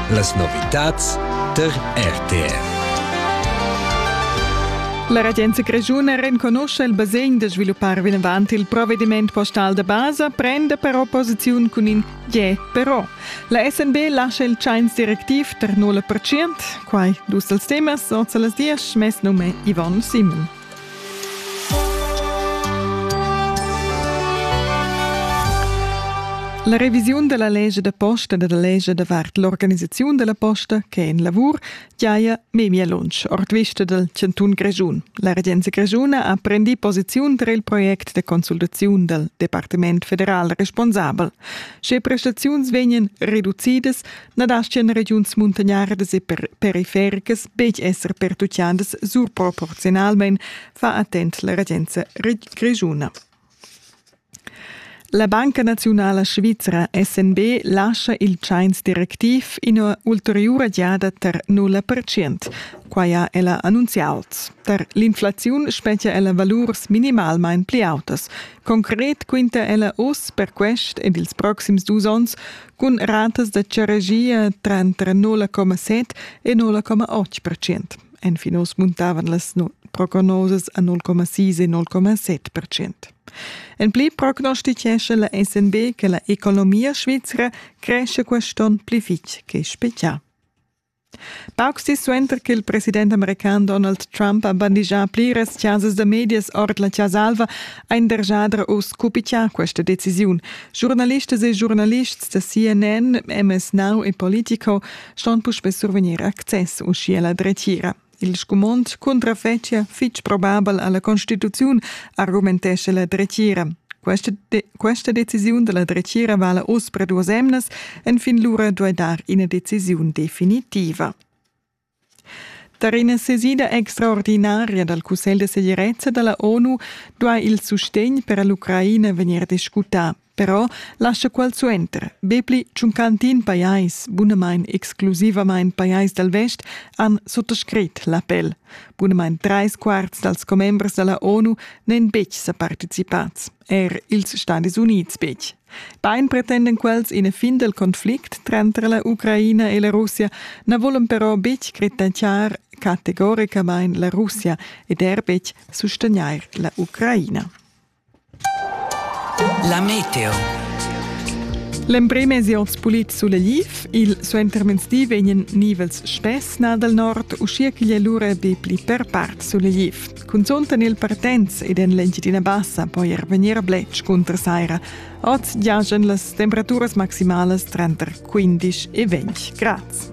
Las novitads tar RTR. La regenza grischuna renconuscha il basegn da sviluppar vinavant il provvediment postal da basa, prenda però posiziun cun in je però. La SNB lascia il tschains directiv tar 0%, quai dus dals temas, oz a las 10, mes num è Yvonne Simon. La revisiun della legge da posta e della legge davart l'organisazione della posta che è in lavor giaia memia lunsch ord vista del cantun Grischun. La regenza grischuna ha prendi posiziun tra il project de consultazione del Departement federal responsabel. Sche prestazioni vegnan reducidas, na dastgan regiuns muntagnardas e perifericas betg esser pertutgadas surproporziunalmain, fa attent la regenza grischuna. La Banca naziunala svizra SNB lascia il tschains directiv ina ulteriura giada tar 0 Quai ha ella annunziaus. Tar l'inflaziun spetgia ella valurs minimalmain pli autas. Concret quinta ella oz per quest ed ils proxims dus onns Cun ratas da charegia tranter 0,7 e 0,8 percent. Enfin oz muntavan las prognosas a 0,6 e 0,7 percent. En pli prognostitgescha la SNB che la economia svizra cresce quest'on pli fitg che spezial. Paucs dis suenter ch'il president american Donald Trump ha bandigià pliras chasas da medias ord la Chasa Alva, ha in dergiadra uss cupichà questa decisiun. Giurnalistas e giurnalists da CNN, MS Now e Politico ston puspè survegnir access uschia la dretgira. Il scumond cuntrafetschia fitg probabel alla constituziun, argumentescha la dretgira. Questa, de questa decisiun della dretgira vala oz per duas emnas, enfin lura duai dar ina decisiun definitiva. Tar ina sesida extraordinaria dal Cussegl de segirezza della ONU duai il sustegn per l'Ucraina vegnir discutà. Però lascha quel suenter. Be pli ch'un cantin pajais, bunamain exclusivamain pajais dal vest, han suttascrit l'appel. Bunamain trais quarts dals commembers da la ONU n'èn betg sa participads, er ils Stadis Unids betg. Bain pretenden quels ina fin del conflict tranter la Ucraina e la Russia, na volan però betg critenciar categoricamain la Russia ed er betg sustegnair la Ucraina. La meteo. L'emprim es hoz pulit sulegliv, il suentermezdi vegnan nivels spess nà dal nord, uschia ch'igl è lura be pli per part sulegliv. Cunzunt en il Partenz ed en l'Engiadina Bassa po er vegnir bletsch cunter saira. Oz giajan las temperaturas maximalas tranter 15 e 20 grads.